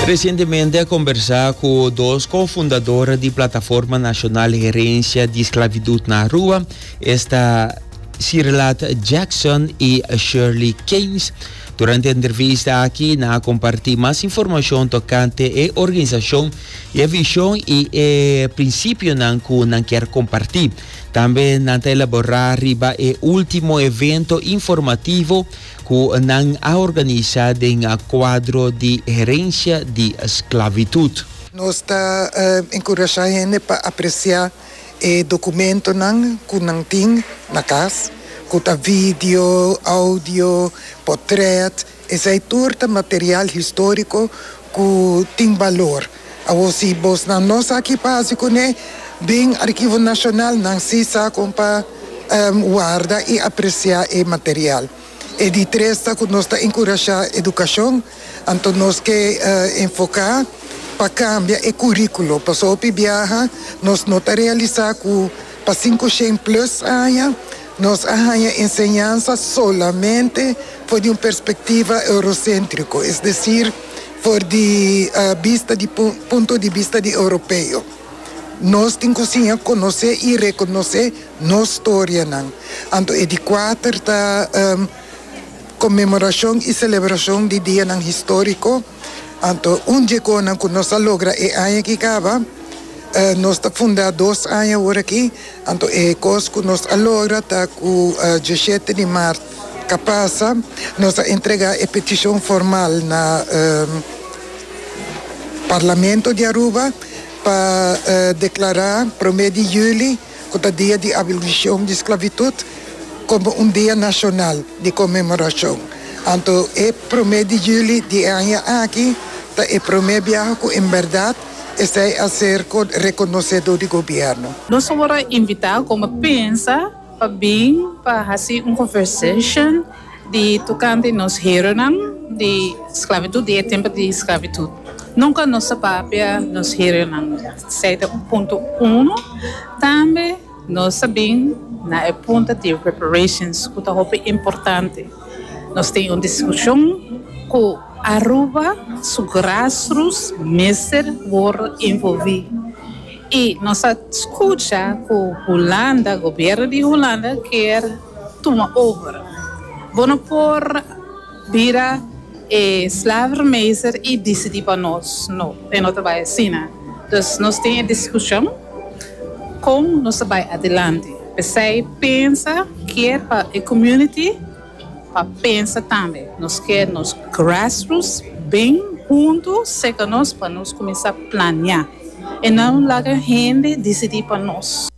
Resientemente a kombersá ku dos kofundadora di Plataforma Nashonal Herensia di Sklavidut na Arua, esta Sirlat Jackson i Shirley Keynes. Durante e entrevista aki nan a kompartí mas informashon tokante e organisashon, i e vishon i e prinsipionan ku nan kier kompartí. Tambe nan ta elaborá riba e último evento informativo ku nan a organisá den kuadro di herensia di sklavitud. Nos ta enkurashá hende pa apresiá e dokumentonan ku nan tin na kas, ku ta video, oudio, potrèt, esei tur ta material históriko ku tin balor. Awor si bosnan no sa ki pasa kuné, bin Arkivo Nashonal nan si sa kon pa warda i apresiá e material. E di tres ta ku nos ta enkurashá edukashon, anto nos ke enfoká pa kambia e kuríkulo. Paso hopi biaha nos no ta realisá ku pa sinku shen plus aña nos a haña enseñansa solamente for di un perspektiva euroséntriko, es desir, For di bista di punto di bista di Europeo, nos tin ku siña konosé i rekonosé nos storianan. Anto e di kuater ta konmemorashon i selebrashon di dianan históriko. Anto un dje konan ku nos a logra e aña ki kaba. Nos ta fundá dos aña orakí, anto e kos ku nos a logra ta ku djeshete di mart. Ta pasa, nos a entregá e petishon formal na Parlamento di Aruba pa deklará promé di yüli, ku ta dia di abolishon di sklavitut, komo un dia nashonal di konmemorashon. Anto e promé di yüli di e aña aki ta e promé biaha ku en bèrdat esei a ser rekonosedó di gobièrnu. Nos awor a invitá kon bo pensa. Pa bin pa hasi un conversation di tocante nos heronan di sclavitud, di e tempo di sclavitud. Nunca nos ta papia nos heronan, esey ta un punto uno. Tambe nos ta bin na e punto di reparations cu ta hopi importante. Nos tin un discusion cu Aruba su grassroots mester worde envolvi. I nos a scucha cu Hulanda, gobierno di Hulanda kier tuma over. Bo no por bira e slavermeester i dicidi pa nos, no, e no ta bai asina. Dus nos tin e discusion con nos ta bai adelante. Pesey pensa kier pa e community. Pa pensa tambe nos kier nos grassroots bin huntu seca nos pa nos cuminsa plania y no laga hende dicidi pa nos.